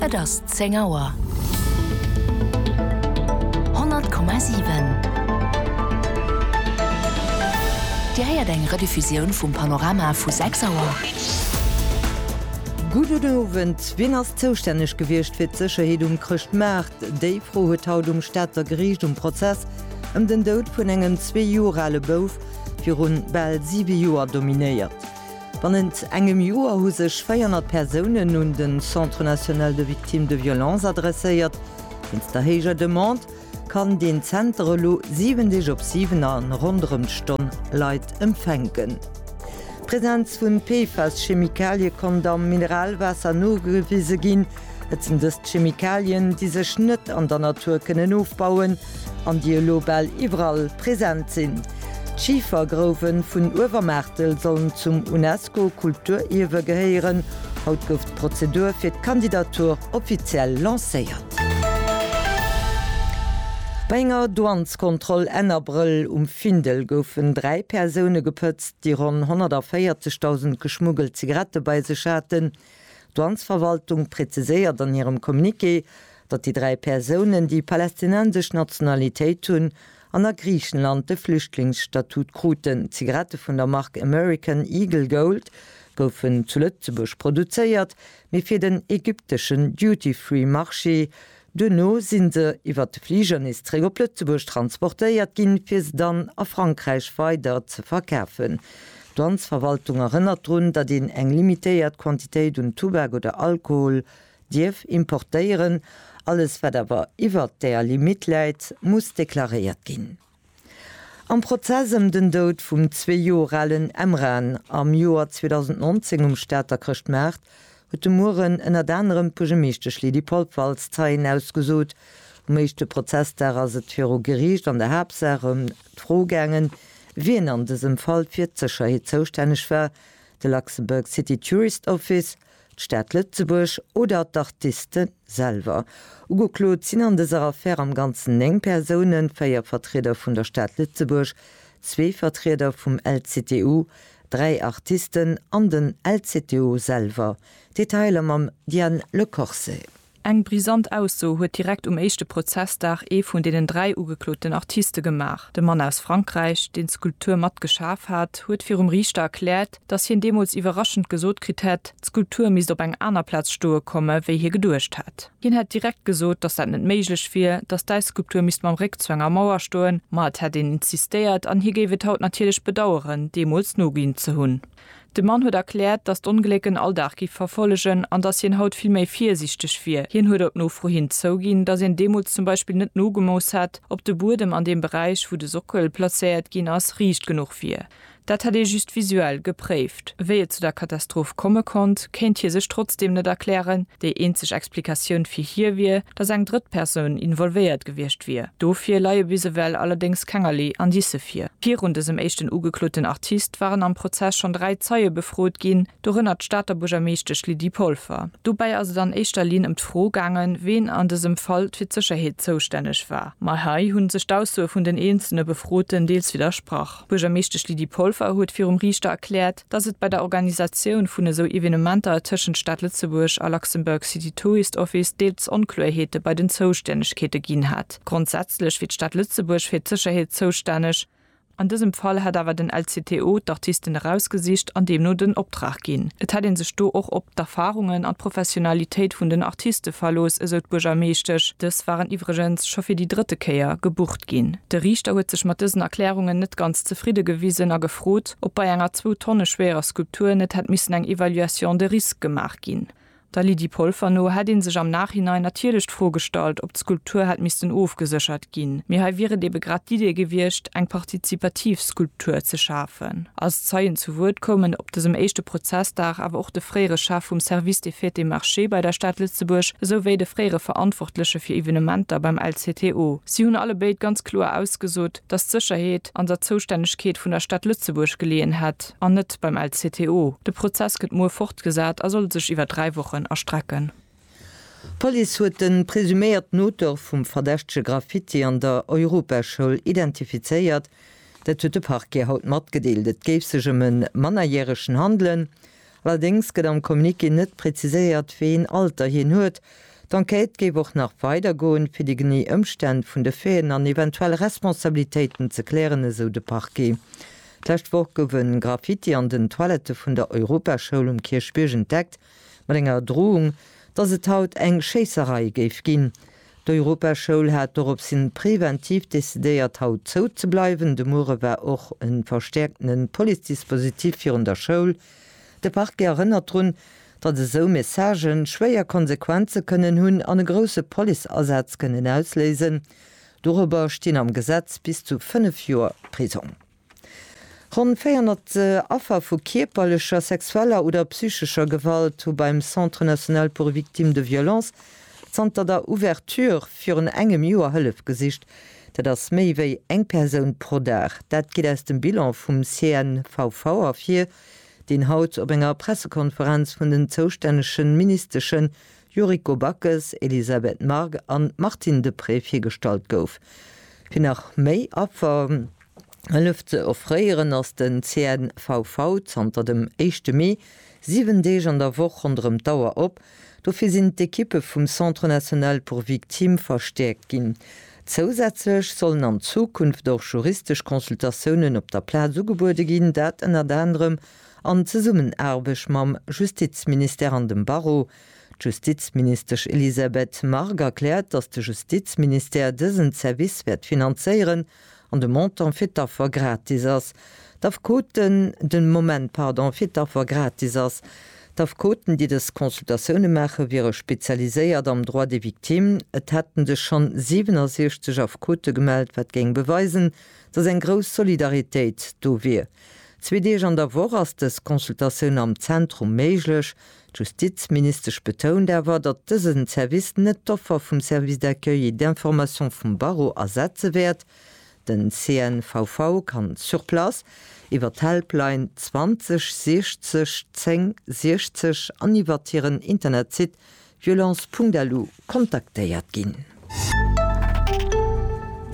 Et ass zéng Auer. 100,7 Dir héiert eng Rediffusioun vum Panorama vu 6 Auer. Gudden Owend. Wien ass zoustänneg gewiescht fir d'Sécherheet um Chrëschtmaart? Déi Fro huet haut um Stater Geriicht um Prozess ëm den Doud vun engem zwee Joer ale Bouf virun bal siwe Joer dominéiert. Bannent engem Joer hu sech 400 Persounen un de Centre national de victimes de violences adresséiert. Wéinst der héijer Demande kann deen Zenter elo 7 Deeg op 7 a ronderëm d'Stonn Leit empfänken. D'Presenz vu PFAS-Chemikalie konnt am Mineralwaasser nogewise ginn. Et sinn dëst Chemikalien, déi sech net an der Natur kënnen ofbauen an déi elo bal iwwerall present sinn. D'Schifergrouwe vun Uewermaartel sollen zum UNESCO-Kulturierwe gehéieren. Haut gouf d'Prozedur fir d'Kandidatur offiziell lancéiert. Bei enger Douaneskontroll Enn Abrëll um Findel goufen dräi Persoune gepëtzt, déi ronn 140.000 geschmuggelt Zigarette bei sech haten. D'Douanesverwaltung präziséiert an hirem Communiqué, datt déi dräi Persounen, déi palästinensesch Nationalitéit hunn an a Griichenland de Flüchtlingsstatut kruten. Zigarette vun der Mark American Eagle Gold goufen zu Lëtzebuerg produzéiert, mee fir den ägypteschen Duty-Free-Marché Duerno sinn se iwwert de Fliger nees zréck op Lëtzebuerg transportéiert ginn, fir se dann a Frankräich weider ze verkafen. D'Landsverwaltung erënnert drun, datt een eng limitéiert Quantitéit un Tubak oder Alkohol dierf importéieren. Alles wat awer iwwert där Limitt läit, muss deklaréiert ginn. Am Prozess ëm den Doud vum zwee Joer alen Emran am Joer 2019 um Stater Chrëschtmaart huet de Mueren ënnert anerem d'Buergermeeschtesch Lydie Polfer als Zeien ausgesot. Um éischte Prozessdag ass et viru Geriicht an der Haaptsaach ëm d'Fro gaangen, wien an dësem Fall fir d'Sécherheet zoustänneg war, de Luxembourg City Tourist Office, d'Stad Lëtzebuerg oder d'Artiste selwer. Ugeklot sinn an dëser Affär am Ganzen 9 Persounen, 4 Vertrieder vun der Stad Lëtzebuerg, zwee Vertrieder vum LCTU, dräi Artisten an den LCTU selwer. Detailer mam Diane Le Corset. Eng brisant Ausso huet direkt um éischte Prozessdag ee vun deenen dräi ugekloten Artiste gemaach. De Mann aus Frankräich, deen d'Skulptur mat geschaf hat, huet virum Riichter erkläert, datt hien deemools iwwerraschend gesot kritt hätt, d'Skulptur misst op eng aner Plaz stoe komme wéi hie geduecht hätt. Hien hätt direkt gesot, datt dat net méiglech wier, datt d'Äisskulptur misst mam Réck zu enger Mauer stoen, ma et hätt een insistéiert an hie géif et haut natierlech bedaueren, deemools noginn ze hunn. De Mann huet erkläert, datt d'Ongléck en Alldag géif verfollegen an datt hien haut vill méi virsiichteg wier. Hien huet op Nofro hin zouginn, datt een deemools zum Beispill net nogemooss hätt, ob de Buedem an deem Beräich, wou de Sockel plazéiert ginn ass, riicht genuch wier. Dat hätt ee just visuell gepréift. Wéi et zu der Katastroph komme konnt, kéint hie sech trotzdeem net erklären. Déi eenzeg Explikatioun fir hie wier, dass eng drëtt Persoun involvéiert gewiescht wier. Dofir leie bis ewell allerdéngs kengerlee Indicë vir. Virun dësem éischten ugekloten Artist waren am Prozess schonn dräi Zeie befrot ginn, dorënner d'Stater Buergermeeschtesch Lydie Polfer. Dobäi ass et an éischter Linn ëm d'Fro gaangen, ween an dësem Fall fir d'Sécherheet zoustänneg war. Ma hei hunn sech d'Aussoe vun den eenzelne Befroten deels widdersprach. D'Buergermeeschtesch Lydie Polfer huet virum Riichter erkläert, dass et bei der Organisatioun vun esou Evenementer tëschent Stad Lëtzebuerg a Luxembourg City Tourist Office deels Onkloerheete bei den Zoustännegkeete ginn hätt. Grondsätzlech wier d'Stad Lëtzebuerg fir d'Sécherheet zoustänneg. An dësem Fall hätt awer den LCTO d'Artisten erausgesicht an deemno den Optrag ginn. Et hätt ee sech do och op d'Erfarungen an d'Professionalitéit vun den Artiste verlooss, esou d'Buergermeeschtesch. Dës waren iwwregens scho fir déi drëtte Kéier gebucht ginn. De Riichter huet sech mat dësen Erklärungen net ganz zefridde gewisen a gefrot, ob bei enger zwou Tonne schwerer Skulptur net hätt missen eng Evaluation de risque gemaach ginn. Der Lydie Polfer no hätt ee sech am Nachhinein natierlech d'Fro gestallt, ob d'Skulptur hätt missten ofgeséchert ginn, mee hei wier et ebe grad d'Idee gewiescht, eng partizipativ Skulptur ze schafen. Als Zeien zu Wuert koumen op dësem éischte Prozessdag awer och de fréiere Chef vum Service des Fêtes et Marchés bei der Stad Lëtzebuerg esou wéi de fréiere Verantwortleche fir Evenementer beim LCTO. Si hunn allebéid ganz kloer ausgesot, dass d'Sécherheet an der Zoustännegkeet vun der Stad Lëtzebuerg geleeën hätt an net beim LCTO. De Prozess gëtt muer fortgesat a soll sech iwwer dräi Wochen erstrecken. D'Police huet de presuméierten Auteur vum verdächtege Graffiti an der Europaschoul identifizéiert. Dat huet de Parquet haut matgedeelt. Et géif sech ëm e Mannerjäregen handelen. Allerdéngs gëtt am Communiqué net preziséiert, wéi een Alter hien huet. D'Enquête géif och nach weider goen, fir déi genee Ëmstänn vun de Faiten an eventuell Responsabilitéiten ze klären, esou de Parquet. D'lescht Woch gouf e Graffiti an den Toilette vun der Europaschoul um Kierchbierg entdeckt, mat enger Drohung, datt et haut eng Schéisserei géif ginn. D'Europaschoul hat doropshin preventiv decidéiert haut zou ze bleiwen. De muere war och e verstäerkten Police-Dispositif virun der Schoul. De Parquet erënnert drun, datt esou Messagë schwéier Konsequenze kënnen hunn an e grousse Police-Asaz kënnen ausléisen. Dorobber stinn am Gesetz bis zu 5 Joer Prisong. Ronn 400 Affer vu kierperlecher, sexueller oder psychescher Gewalt hu beim Centre national pour victimes de violences zanter der Ouverture virun engem Joer Hëllef gesicht. Dat ass méi wéi eng Persoun pro Dag. Dat geet aus dem Bilan vum CNVV ervir, deen haut op enger Pressekonferenz vun den zoustännege Ministesche Yuriko Backes, Elisabeth Margue an Martine Deprez virgestallt gouf. Fir nach méi Affer. Hëllef ze offréieren, ass den CNVV zanter dem éischte Mee 7 Deeg an der Woch ronderëm d'Auer op. Dofir sinn d'Ekippe vum Centre National pour Victimes verstäerkt ginn. Zousätzlech sollen an Zukunft och juristesch Consultatiounen op der Plaz ugebuede ginn, dat ënnert anerem an Zesummenaarbecht mam Justizministère an dem Barreau. D'Justizministesch Elisabeth Margue erkläert, datt de Justizministère dësen Service wäert finanzéieren. an de Montant fir d'Affer gratis ass, d'Affekoten, den Moment, pardon, fir d'Affer gratis ass, d'Affekoten, déi dës Consultatioune maachen, wiere spezialiséiert am Droit des victimes, et hätten sech schonn 67 Affekote gemellt, wat géing beweisen, dass eng grouss Solidaritéit do wier. Zwee Deeg an der Woch ass dës Consultatioun am Zentrum méiglech, D'Justizministesch betount awer, datt dësen Service net d'Offer vum Service d'accueil et d'information vum Barreau ersetze wäert. Den CNVV kann sur place, iwwer d'Helpline 20 60 10 60 an iwwert hiren Internetsite violence.lu kontaktéiert ginn.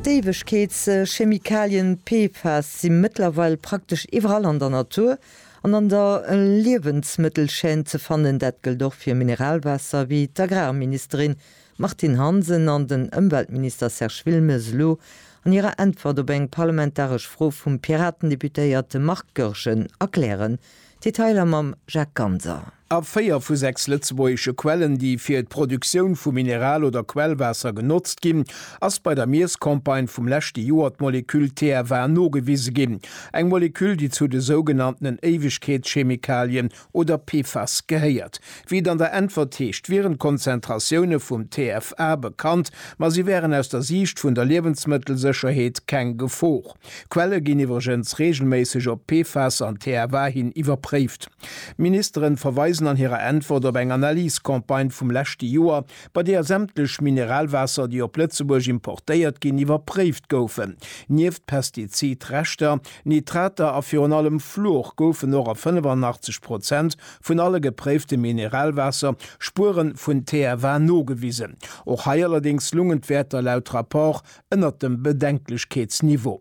D'Éiwegkeetschemikalien PFAS si mëttlerweil praktesch iwwerall an der Natur an an der Liewensmëttelchaîne ze fannen. Dat gëllt och fir Mineralwaasser, wéi d'Agrarministerin Martine Hansen an den Ëmweltminister Serge Wilmes elo an hirer Äntwert op eng parlamentaresch Fro vum Piraten-Deputéierte Marc Goergen erklären. Detailer mam Jacques Ganser. A véier vu sechs lëtzebuergesche Quellen, déi fir d'Produktioun vu Mineral oder Quellwaasser genotzt ginn, ass bei der Miesscampagne vum leschte Joer d'Moleküll TFA nogewise ginn, eng Moleküll, déi zu de sougenanntenen Éiwegkeetschemikalien oder PFAS gehéiert. Wéi et an der Äntwert heescht, wieren d'Konzentratioune vum TFA bekannt, ma si wären aus der Siicht vun der Liewensmëttelsécherheet keng Gefor. Quelle ginn iwwregens reegelméisseg op d'PFAS an d'TFA hin iwwerpréift. D'Ministeren verweisen an hirer Äntwert op eng Analyse-Campagne vum leschte Joer, bei deeër sämtlech Mineralwaasser, déi op Lëtzebuerg importéiert ginn, iwwerpréift goufen. Nieft Pestizid-Reschter, Nitrater a virun allem Fluor goufen och a 85 Prozent vun alle gepréifte Mineralwaasser Spuere vun TFA nogewisen. Och hei allerdéngs lungen d'Wäerter laut Rapport Ënnert dem Bedenklechkeetsniveau.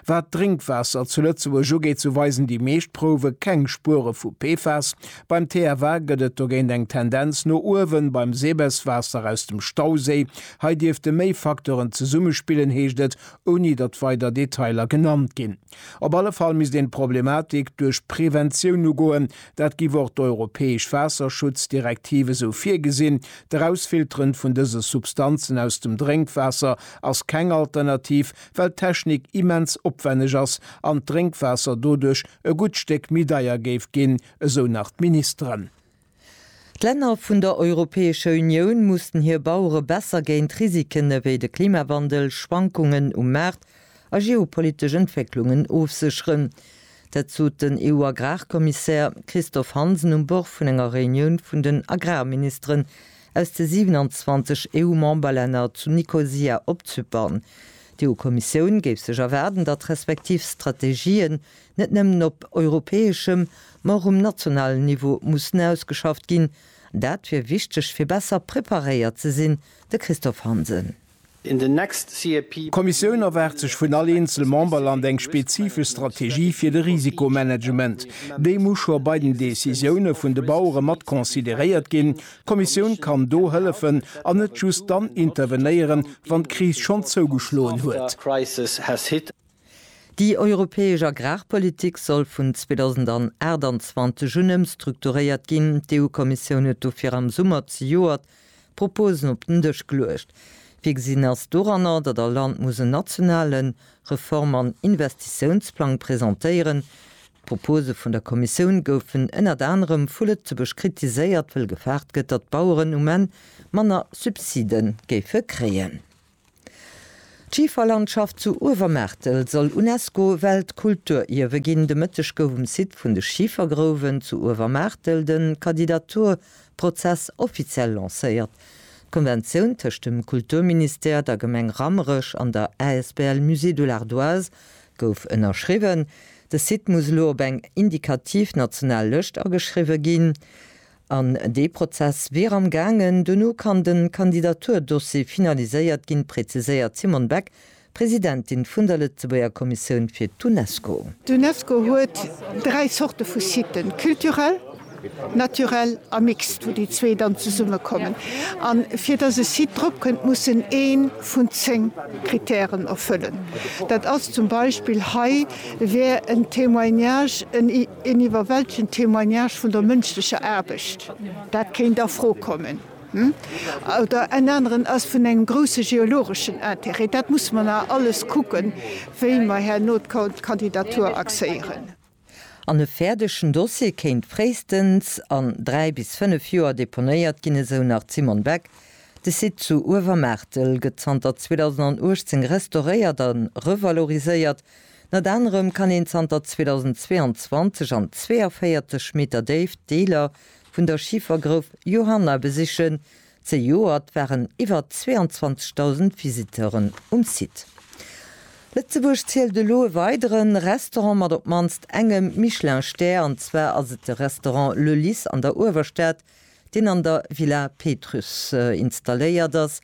Wat d'Drénkwaasser zu Lëtzebuerg ugeet, sou weisen déi meescht Prouwe keng Spuere vu PFAS. Beim TFA gëtt et dogéint eng Tendenz no uewen. Beim Sebes-Waasser aus dem Stauséi, hei dierfte méi Facteuren zesummespillen, heescht et, ouni datt weider Detailer genannt ginn. Op alle Fall misst een d'Problematik duerch Preventioun ugoen, Dat giff och d'europäesch Waasserschutzdirektiv esou virgesinn. D'Erausfilteren vun dëse Substanzen aus dem Drénkwaasser ass keng Alternativ, well d'Technik immens opwenneg ass an d'Drénkwaasser doduerch e gutt Stéck méi deier géif ginn, esou nach d'Ministeren. D'Länner vun der Europäescher Unioun mussen hir Bauere besser géint Risiken ewéi de Klimawandel, Schwankungen um Maart a geopolitesch Entwécklungen ofsécheren. Dat sot den EU-Agrarkommissär Christophe Hansen um Bord vun enger Reunioun vun den Agrarministeren aus de 27 EU-Memberlänner zu Nikosia op Zypern. D'EU-Kommissioun géif sech erwaarden, datt d'respektiv Strategien net nëmmen op europäeschem, ma och um nationalen Niveau mussen ausgeschafft ginn. Dat wier wichteg, fir besser preparéiert ze sinn, de Christophe Hansen. in the next CAP. D'Kommissioun erwaart sech vun all eenzel Memberland eng spezifesch Strategie fir de Risikomanagement. Déi muss scho bei den Decisioune vun de Bauere mat consideréiert ginn. D'Kommissioun kann do hëllefen an net just dann intervenéieren, wann d'Kris schonn zougeschloen huet. Déi europäesch Agrarpolitik soll vun 2028 un ëmstrukturéiert ginn. D'EU-Kommissioun huet dofir am Summer zejoert Proposen op den Dësch geluecht. Virgesinn ass doranner, datt all Land muss en nationale Reform an Investitiounsplang presentéieren. D'Propose vun der Kommissioun goufen ënnert anerem vu Lëtzebuerg kritiséiert, wëll gefaart gëtt, datt d'Baueren um Enn manner Subside géife kréien. D'Schiferlandschaft zu Uewermaartel soll UNESCO-Weltkulturierwe ginn. De Mëtteg gouf um Site vun de Schifergrouwen zu Uewermaartel de Kandidaturprozess offiziell lancéiert. D'Konventioun tëscht dem Kulturministère, der Gemeng Rammerech an der asbl Musée de l'Ardoise gouf ënnerschriwwen. De Site muss elo op eng indikativ national Lëscht ageschriwwe ginn. An dee Prozess wier am gaangen. Dono kann de Kandidaturdossier finaliséiert ginn, präziséiert d'Simone Beck, Presidentin vun der Lëtzebuerger Kommissioun fir d'Unesco. D'Unesco huet dräi Zorte vu Siten, culturel, naturel a mixt, wou déi zwee dann zesummekommen. A fir datt e Site drop kënnt, muss en ee vun zéng Krittären erfëllen. Dat ass zum Beispill, hei wär en Témoignage, en. Een iwwerwältegend Témoignage vun der mënschlecher Aarbecht, dat kéint a Fro kommen. Oder en aneren ass vun engem grousse geologeschen Interêt. Dat musse mer nach alles kucken, wéi mer herno d'Kandidatur axéieren. An e fäerdegen Dossier kéint fréistens an dräi bis fënnef Joer deponéiert ginn, esou nach d'Simone Beck. De Site zu Uewermaartel gëtt zanter 2018 restauréiert a revaloriséiert. Ënnert anerem kann een zanter 2022 an 42 Meter Déift Deeler vun der Schifergrouf Johanna besichen. Zejoert waren iwwer 22.000 Visiteuren um Site. Lëtzebuerg zielt elo e weidere Restaurant mat op d'mannst engem Michelin-Stär, an zwar ass et de Restaurant Le Lys an der Uewerstad, deen an der Villa Pétrusse installéiert ass.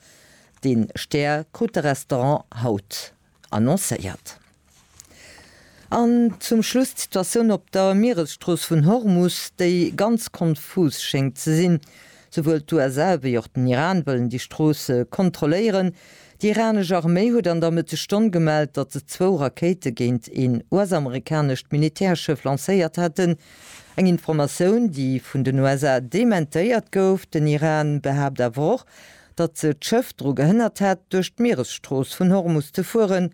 Dee Stär krut de Restaurant haut. annoncéiert. An zum Schluss d'Situatioun op der Mieresstrooss vun Hormus, déi ganz konfus schéngt ze sinn. Souwuel d'USA wéi och den Iran wëllen déi Strooss kontrolléieren. Déi iranesch Arméi huet an der Mëttesstonn gemellt, datt se zwou Rakéite géint een US-amerikanescht Militärschëff lancéiert hätten. Eng Informatioun, déi vun den USA dementéiert gouf. Den Iran behaapt awer och, datt se d'Schëff dru gehënnert hätt, duerch d'Mieresstrooss vun Hormus ze fueren,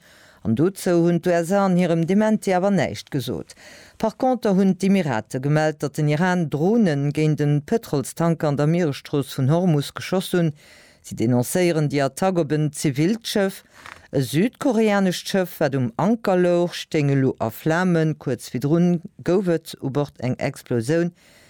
an dozou hunn d'USA an hirem Dementi awer näischt gesot. Par conter hunn d'Emirate gemellt, datt den Iran Dronen géint e Pëtrolstanker an der Mieresstrooss vun Hormus geschoss hunn. Si denoncéieren déi Attack op en zivilt Schëff. E südkoreanescht Schëff, wat um Anker louch, stéing elo a Flamen. Kuerz virdrun gouf et u Bord eng Explosioun,